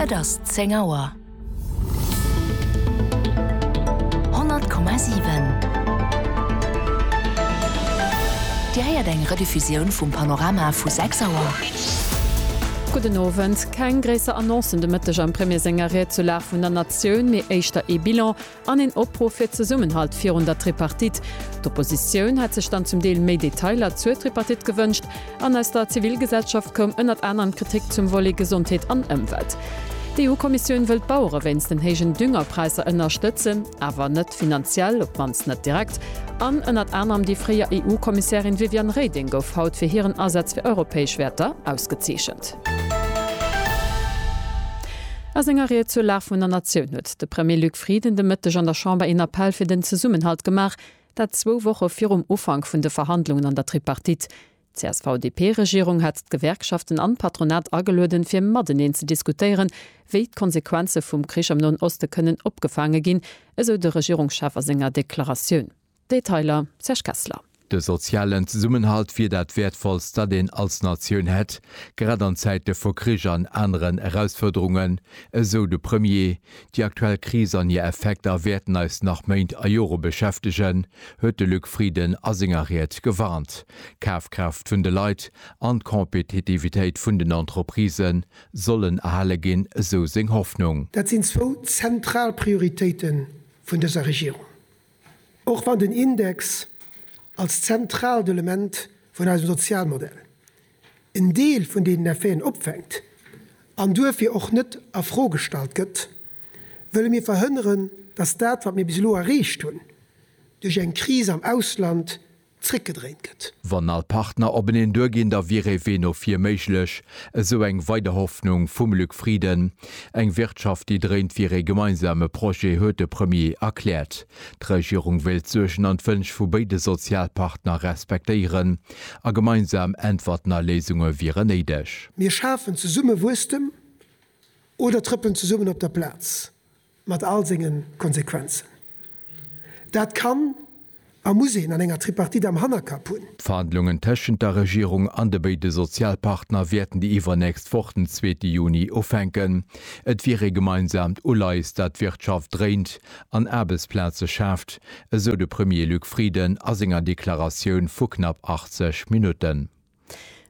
Et ass zéng Auer. 100,7 Dir héiert eng Rediffusioun vum Panorama vu 6 Auer. Gudden Owend. Keng gréisser Annoncen de Mëtteg am Premier senger Ried zur Lag vun der Natioun, mee éischter ee Bilan. An een Opruff fir Zesummenhalt virun der Tripartite. D'Oppositioun hätt sech dann zum Deel méi Detailer zur Tripartite gewënscht. An aus der Zivilgesellschaft koum ënnert anerem Kritik zum Volet Gesondheet an Ëmwelt. D'EU-Kommissioun wëll d'Bauere wéinst den héijen Düngerpräisser ënnerstëtzen, awer net finanziell, op d'mannst net direkt. An ënnert anerem déi fréier EU-Kommissärin Viviane Reding gouf haut fir hiren Asaz fir europäesch Wäerter ausgezeechent. A senger Ried zur Lag vun der Natioun huet de Premier Luc Frieden de Mëtteg an der Chamber een Appell fir den Zesummenhalt gemaach, dat zwou Woche virum Ufank vun de Verhandlungen an der Tripartite. D'CSV-DP-Regierung hat d'Gewerkschaften an d'Patronat agelueden, fir mateneen ze diskutéieren, wéi d'Konsequenze vum Krich am Noen Oste kënnen opgefaange ginn, esou de Regierungschef a senger Deklaratioun. Detailer, Serge Kessler. De sozialen Zesummenhalt wier dat Wäertvollst, dat een als Natioun hätt, grad an Zäite vu Krich an aneren Erausfuerderungen, esou de Premier. Déi aktuell Kris an hir Effekter wäerten eis nach Méint a Jore beschäftegen, huet de Luc Frieden a senger Ried gewarnt. D'Kafkraaft vun de Leit an d'Kompetitivitéit vun den Entreprisë sollen erhale ginn, esou seng Hoffnung. Dat sinn zwou zentral Prioritéite vun dëser Regierung. Och wann den Index als zentraalt Element vun eisem Sozialmodell en Deel vun deenen Effeten opfänkt an duerfir och net a Fro gestallt gëtt, wëlle mir verhënneren, dass dat, wat mir bis elo erreecht hunn, duerch eng Kris am Ausland zréckgedréint gëtt. Wann all Partner openeen duer ginn, da wier ee Wee no vir méiglech, esou eng weider Hoffnung vum Luc Frieden. Eng Wirtschaft, déi dréint, wier ee gemeinsame Projet, huet de Premier erkläert. D'Regierung wéilt d'Suergen an d'Wënsch vu béide Sozialpartner respektéieren a gemeinsam Äntwerten a Léisunge wieren néideg. Mir schafen zesumme Wuesstem oder trëppelen zesummen op der Plaz, Mat all senge Konsequenzen. Dat kann a muss een an enger Tripartite am Hannerkapp hunn. D'Verhandlungen tëschent der Regierung an de béide Sozialpartner wäerten déi iwwernächst Woch, den zweete Juni, ufänken. Et wier ee gemeinsaamt Uleies, dat d'Wirtschaft dréint an Aarbechtsplaze schaaft, esou de Premier Luc Frieden a senger Deklaratioun vu knapp 80 Minutten.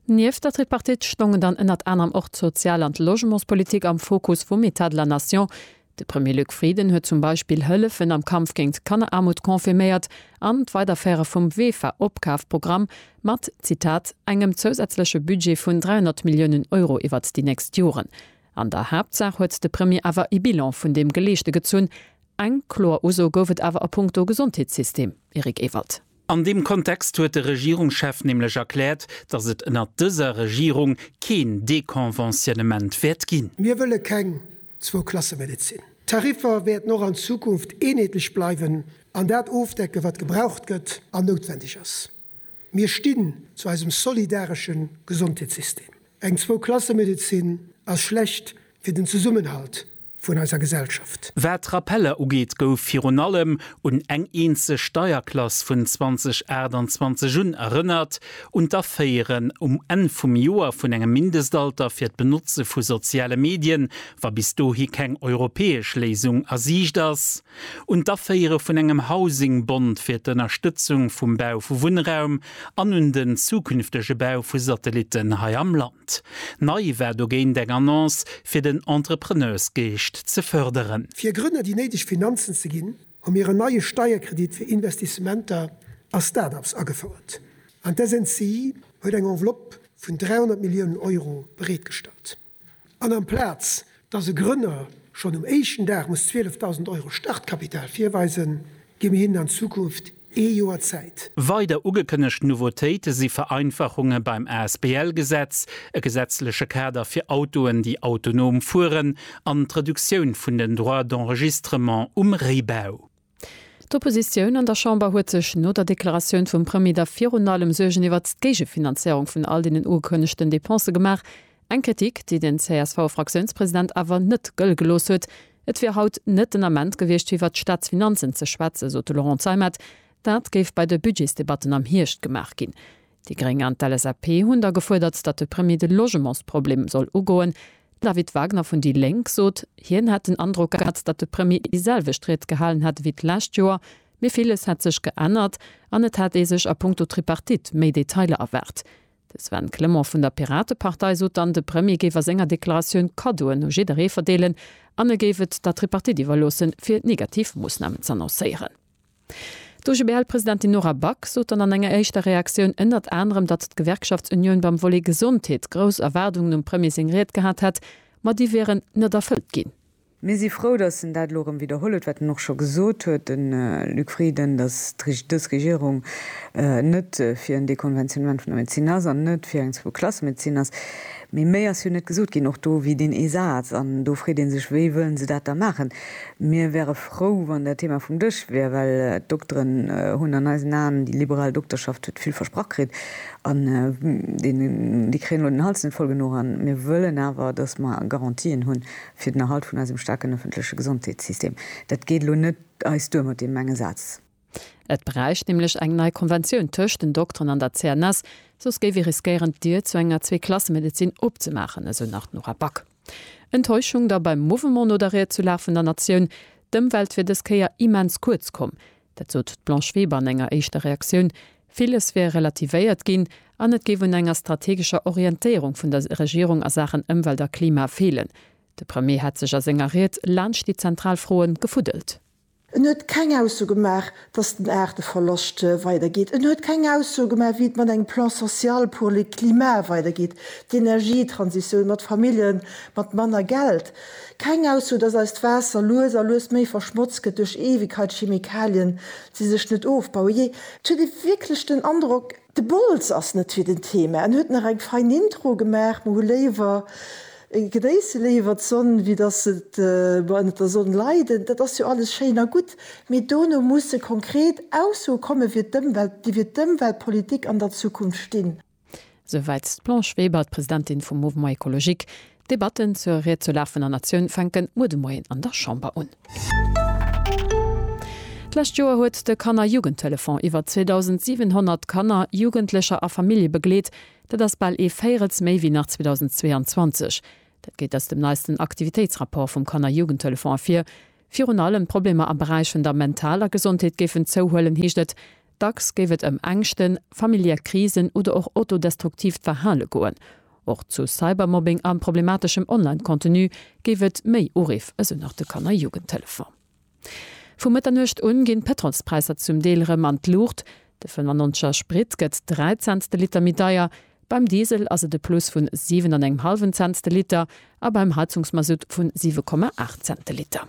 Nieft der Tripartite stongen dann ënnert anerem och d'Sozial an d'Logementspolitik am Fokus vum Etat de la Nation. De Premier Luc Frieden huet zum Beispill Hëllefen am Kampf géint d'Kanneraarmut confirméiert an d'Weiderféiere vum WEFA-Opkafprogramm mat, Zitat, engem zousätzleche Budget vun 300 Milliounen Euro iwwert déi nächst Joren. An der Haaptsaach huet de Premier awer e Bilan vun deem Geleeschte gezunn. Eng kloer Uso gouf et awer a punkto Gesondheetssystem, Eric Ewald. An deem Kontext huet de Regierungschef nämlech erkläert, datt et ënnert dëser Regierung keen Deconventionnement wäert ginn. Mir wëlle keng Zwou-Klasse-Medezin. D'Tariffer wäerten och an Zukunft eenheetlech bleiwen an dat ofdecken, wat gebraucht gëtt an noutwendeg ass. Mir stinn zu eisem solidaresche Gesondheetssystem. Eng Zwou-Klasse-Medezin ass schlecht fir den Zesummenhalt vun eiser Gesellschaft. Wat d'Rappeller ugeet, gouf virun allem un eng eenzeg Steierklass vun 2028 un erënnert, un d'Aféieren um Enn vum Joer vun engem Mindestalter fir d'Benotze vu soziale Medien, wa bis dohi keng europäesch Léisung a Siicht ass, un d'Aféiere vun engem Housingbond fir d'Ënnerstëtzung vum Bau vu Wunnraum an un den zukünftege Bau vu Satellitten hei am Land. Markt. Nei war dogéint eng Annonce fir den Entrepreneursgeescht ze fërderen. Fir Grënner déi néideg Finanzen ze ginn, hu mir en neie Steierkredit fir Investissementer a Start-ups agefouert an d'SNCI huet eng Enveloppe vun 300 Milliounen Euro bereetgestallt. An amplaz Dass e Grënner schonn um éischten Dag muss 12.000 Euro Startkapital virweisen, gi mir hinnen an Zukunft ee Joer Zäit. Weider ugekënnegt Nouveautéite si Vereinfachunge beim Asbl-Gesetz, e gesetzleche Kader fir Autoen, déi autonom fueren an d'Reduktioun vun den Droits d'enregistrement um Réibau. D'Oppositioun an der Chamber huet sech no der Deklaratioun vum Premier da virun allem Suergen iwwert d'Géigefinanzéierung vun all deenen ugekënnegten Depensë gemaach. Eng Kritik, déi den CSV-Fraktiounspresident awer net gëlle gelooss huet. Et wier haut net den Ament gewiescht, fir iwwert d'Staatsfinanzen ze schwätzen, sot de Laurent Zeimet. Dat géif bei de Budgetsdebatten am Hierscht gemaach ginn. Déi Gréng an d'LSAP hunn da gefuerdert, datt de Premier de Logementsproblem soll ugoen. De David Wagner vun déi Lénk sot, hien hätt den Androck gehat, datt de Premier déi selwecht Ried gehalen hätt ewéi d'lescht Joer, mee villes hätt sech geännert an et hätt ee sech a Punkto Tripartite méi Detailer erwaart. De Sven Clement vun der Piratepartei sot dann, de Premier géif a senger Deklaratioun Kaddoen u jidderee verdeelen an e géif et der Tripartite iwwerloossen, fir negativ Moossnamen z'annoncéieren. D'OGBL-Presidentin Nora Back sot dann an enger éischter Reaktioun ënnert anerem, datt d'Gewerkschaftsunioun beim Volet Gesondheet grouss Erwaardungen um Premier seng Ried gehat hätt, ma déi wieren net erfëllt ginn. Mir si frou, datt en dat elo erëm widderholl huet, wat en och scho gesot huet, de Luc Frieden, datt dës Regierung net fir en Dekonventionnement vun der Medezin ass an net fir eng Zwou-Klasse-Medezin ass. Mee méi ass jo net gesot ginn, och do wier deen ee Saz. An do freet ee sech, wéi wëllen se dat da maachen? Mir wäre frou, wann dat Thema vum Dësch wier, well d'Dokteren hunn an eisen Aen, déi liberal Dokterschaft huet vill versprach kritt an déi kréien elo den Hals net voll genuch. A mir wëllen awer, datt mer Garantien hu fir den Erhalt vun eisem staarken ëffentleche Gesondheetssystem. Dat geet elo net eis duer mat deem enge Saz. Et bräicht nämlech eng nei Konventioun tëscht den Dokteren an der CNS, soss géif ee riskéieren, d'Dier zu enger Zweeklassemedezin opzemaachen, esou nach d'Nora Back. Enttäuschung da beim Mouvement no der Ried zu Lag vun der Natioun, D'Ëmwelt wier dës Kéier immens kuerz komm. Dat sot d'Blanche Weber an enger éischter Reaktioun. Villes wier relativéiert ginn an et géif un enger strategescher Orientéierung vun der Regierung a Saachen Ëmwelt a Klima feelen. De Premier hätt sech a senger Ried laanscht déi zentral Froe gefuddelt. En huet keng Ausso gemaach, dass den Aarteverloscht weidergeet. En huet keng Ausso gemaach, wéi et mat engem Plan social pour le climat weidergeet, d'Energietransitioun, mat Famillje mat manner Geld. Keng Ausso, dass eist Waasser lues a lues méi verschmotzt gëtt duerch Eewegkeitschemikalien, déi sech net ofbauen. Jee, et huet ee wierklech den Androck, De Bols ass net fir den Thema, en huet nach eng fein Intro gemaach, mer hu léiwer, genéisse léiwer d'Sonn, wéi dass et mer ënnert der Sonn leiden. Dat ass jo alles schéin a gutt, mee dono musse konkret Aussoe komme fir d'Ëmwelt, déi fir d'Ëmweltpolitik an der Zukunft stinn. Souwäit d'Blanche Weber, d'Presidentin vum Mouvement Ecologique. D'Debatten zur Ried zur Lag vun der Natioun fänken muer de Moien an der Chamber un. D'lescht Joer huet de Kanner-Jugendtelefon iwwer 2.700 Kanner, Jugendlecher a Famillje begleet. Dat ass bal ee Véirels méi wéi nach 2022. Dat geet aus dem neisten Aktivitéitsrapport vum Kanner-Jugendtelefon ervir. Virun allem d'Problemer am Beräich vun der mentaler Gesondheet géifen zouhuelen, heescht et. Dacks géif et ëm Ängschten, familiär Krisen oder och autodestruktiivt Verhale goen. Och zu Cybermobbing a problemateschem Online-Contenu géif et méi Uriff, esou nach de Kanner Jugendtelefon. Vu Mëtternuecht un ginn d'Pëtrolspräisser zum Deel erëm an d'Luucht. De 95 er Sprit gëtt 3 Cents de Liter méi deier, beim Diesel ass et e Plus vun 7 an engem hallwen Cents de Liter a beim Heizungsmasutt vun 7,8 Cents de Liter.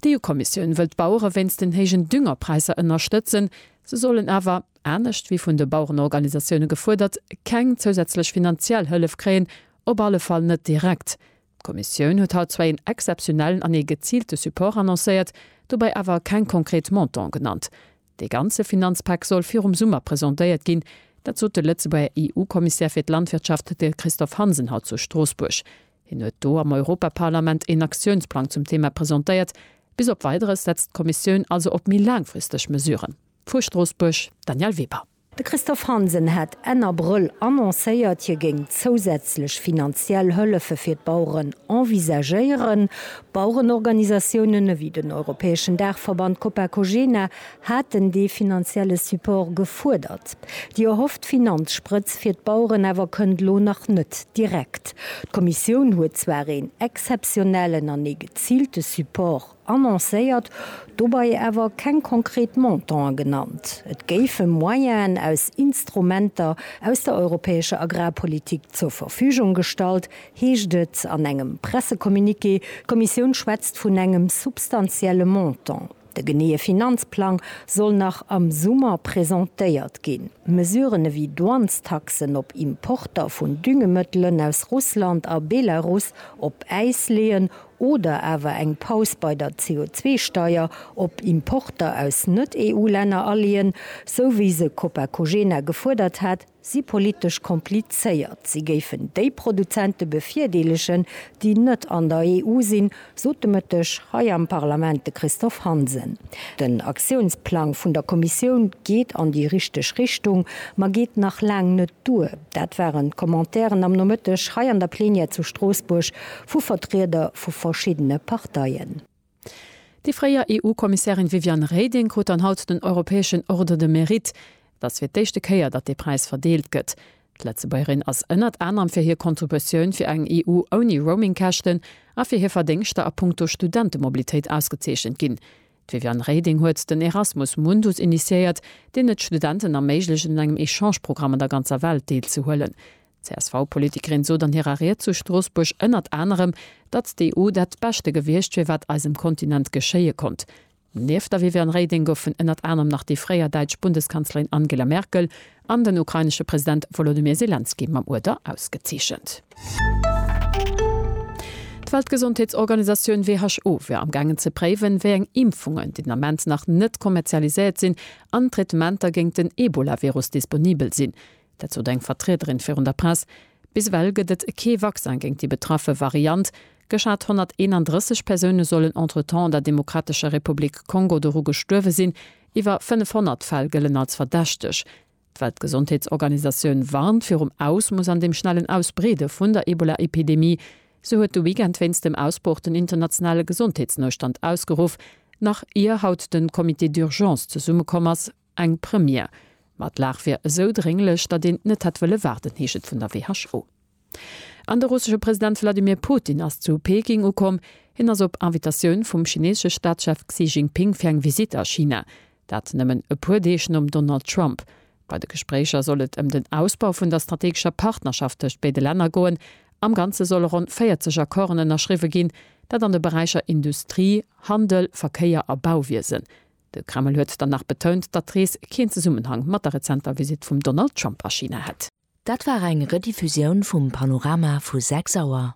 D'EU-Kommissioun wëllt d'Bauere wéinst den héijen Düngerpräisser ënnerstëtzen. Se sollen awer, anescht wéi vun de Bauerenorganisatioune gefuerdert, keng zousätzlech finanziell Hëllef kréien, op alle Fall net direkt. D'Kommissioun huet haut zwar een exzeptionellen an ee geziilte Support annoncéiert, dobäi awer keng konkret Montanten genannt. Dee ganze Finanzpak soll virum Summer presentéiert ginn. Dat sot de Lëtzebuerger EU-Kommissär fir d'Landwirtschaft, de Christophe Hansen, haut zu Stroossbuerg. Hien huet do am Europaparlament een Aktiounsplang zum Thema presentéiert. Bis op Weideres setzt d'Kommissioun also op méi laangfristeg Mesuren. Vu Stroossbuerg, Danièle Weber. De Christophe Hansen hat Enn Abrëll annoncéiert, hie géing zousätzlech finanziell Hëllefe fir d'Baueren envisagéieren. Bauerenorganisatiounen ewéi den europäeschen Daachverband Copacogena haten dee finanzielle Support gefuerdert. Déi erhofft Finanzsprëtz fir d'Baueren awer kënnt elo nach net direkt. D'Kommissioun huet zwar een exzeptionellen an ee geziilte Support annoncéiert, dobei awer keng konkret Montanten genannt. Et géife Moyenen aus Instrumenter aus der europäescher Agrarpolitik zur Verfügung gestallt, heescht et an engem Pressecommuniqué. D'Kommissioun schwätzt vun engem substantielle Montant. De geneeë Finanzplang soll nach am Summer presentéiert ginn. Mesuren ewéi Douanestaxen op Importer vun Düngemëttelen aus Russland a Belarus op Äis leeën oder awer eng Paus bei der CO2-Steier op Importer aus Net-EU-Länner aleeën, sou wéi se Copacogena gefuerdert hat, si politesch komplizéiert, si géifen déi Produzente bevirdeelegen, déi net an der EU sinn, sot de Mëtteg hei am Parlament de Christophe Hansen. Den Aktiounsplang vun der Kommissioun geet an déi richteg Richtung, ma geet nach laang net duer. Dat waren d'Commentairen am Nomëtteg hei an der Plenière zu Stroossbuerg vu Vertrieder vu verschiddene Parteien. Déi fréier EU-Kommissärin Viviane Reding krut dann haut den europäeschen Ordre de Mérite. Et ass fir d'éischte Kéier, datt dee Präis verdeelt gëtt. D'Lëtzebuergerin ass ënnert anerem fir hir Contributioun fir eng EU ouni Roaming-Käschten a fir hir Verdéngschter a punkto Studentemobilitéit ausgezeechent ginn. D'Viviane Reding huet den Erasmus Mundus initiéiert, deen et Studenten erméiglecht un engem Echange-Programm an der ganzer Welt deelzehuelen. D'CSV-Politikerin sot an hirer Ried zu Stroossbuerg ënnert anerem, datt d'EU dat Beschte gewiescht wier, wat eisem Kontinent geschéie konnt. Nieft der Viviane Reding goufen ënnert anerem nach déi fréier däitsch Bundeskanzlerin Angela Merkel an den ukrainesche President Wolodymyr Selenskyj mam Uerder ausgezeechent. D'Weltgesondheetsorganisatioun WHO wier am gaangen ze préiwen, wéi eng Impfungen, den Ament nach net kommerzialiséiert sinn, an Traitementer géint den Ebola-Virus disponibel sinn. Dat sot eng Vertriederin virun der Press. Bis ewell gëtt et kee Vaccin géint déi betraffe Variant. Geschat 131 Persoune sollen entretemps an der Demokratescher Republik Kongo doru gestuerwe sinn. Iwwer 500 Fäll gëllen als verdächteg. D'Weltgesondheetsorganisatioun warnt virum Ausmoss an dem schnellen Ausbreede vun der Ebola-Epidemie. Se huet de Weekend wéinst dem Ausbroch den internationale Gesondheetsnoustand ausgeruff, nach ier haut de Comité d'urgence zesummekomm ass, Eng Première. Ma d'Lag wier esou drénglech, datt een net hätt wëlle waarden, heescht et vun der WHO. An de russesche President Wladimir Putin ass zu Peking ukomm. Hien ass op Invitatioun vum chineesesche Staatschef Xi Jinping fir eng Visitt a China. Dat nëmmen e puer Deeg nom Donald Trump. Bei de Gespréicher soll et ëm den Ausbau vun der strategescher Partnerschaft tëscht béide Länner goen. Am Ganze solle ronn 40 Accorden ënnerschriwwe ginn, dat an de Beräicher Industrie, Handel, Verkéier a Bauwiesen. De Kreml huet dann nach betount, datt d'Rees keen Zesummenhang mat der rezenter Visitt vum Donald Trump a China hätt. Dat war eng Rediffusioun vum Panorama vu 6 Auer.